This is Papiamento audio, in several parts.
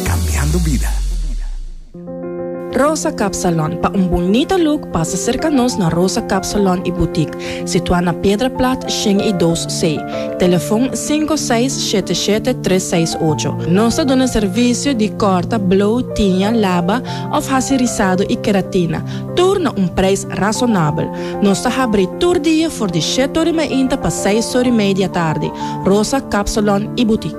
Cambiando bida. Rosa Cap Salon, pa un bunita look pasa serka nos na Rosa Cap Salon y Boutique, situá na Piedra Plat shen y dos C, telefon sinku seis shete shete tres seis ocho. Nos ta duna servicio di corta, blow, tiña, laba of haci rizado y keratina, tur na un prijs razonabel. Nos ta habri tur dia for di shete ori mainta pa seis ori mei di atardi. Rosa Cap Salon y Boutique.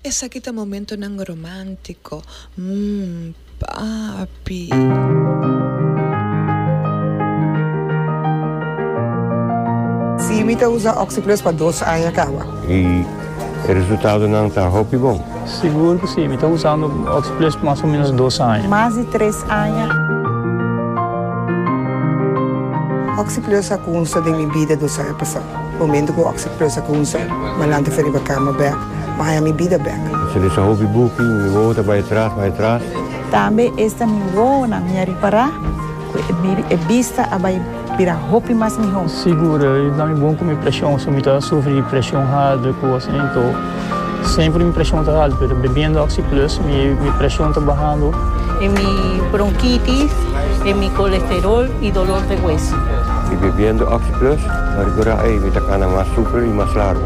Esaki ta momentonan romántico, mm, papi. Sí, mi ta usa Oxyplus pa dos aña caba. Y e resultadonan ta hopi bon. Sigur cu sí, mi ta usando Oxyplus pa mas o menos dos aña. Mas di tres aña. Oxyplus a cunsa den mi bida dos aña pasado. Momento cu Oxyplus a cunsa, m'alanta feriba cama bek. Maya mi bida bek. Si mi sa hopi buki, mi wowo ta bai atras, bai atras. Tambe esta mi wowonan mi a ripará ku e bista a bai bira hopi mas mihó. Sigur, i na mi bon ku mi preshon, so mi ta sufri di preshon hardu i kosa asin. Anto, semper mi preshon ta haltu, pero bebiendo Oxyplus mi preshon ta bahando. E mi bronkitis, e mi kolesterol i dolor de hueso. I bebiendo Oxyplus, mi a rikorda, ei, mi ta kana mas super i mas largu.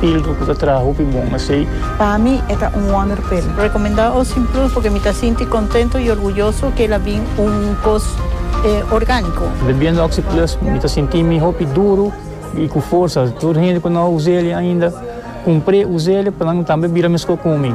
Pildo ku ta traha hopi bon asei. Pa mi e ta un wonderpil. Rekomendá Ocean Plus porque mi ta sinti kontento i orguyoso ke el a bin un kos orgániko. Bebiendo Oxi Plus mi ta sinti mi hopi duru i ku forsa. Tur hende ku no a us'e ainda, kumpr'e, us'e pa nan tambe bira meskó ku mi.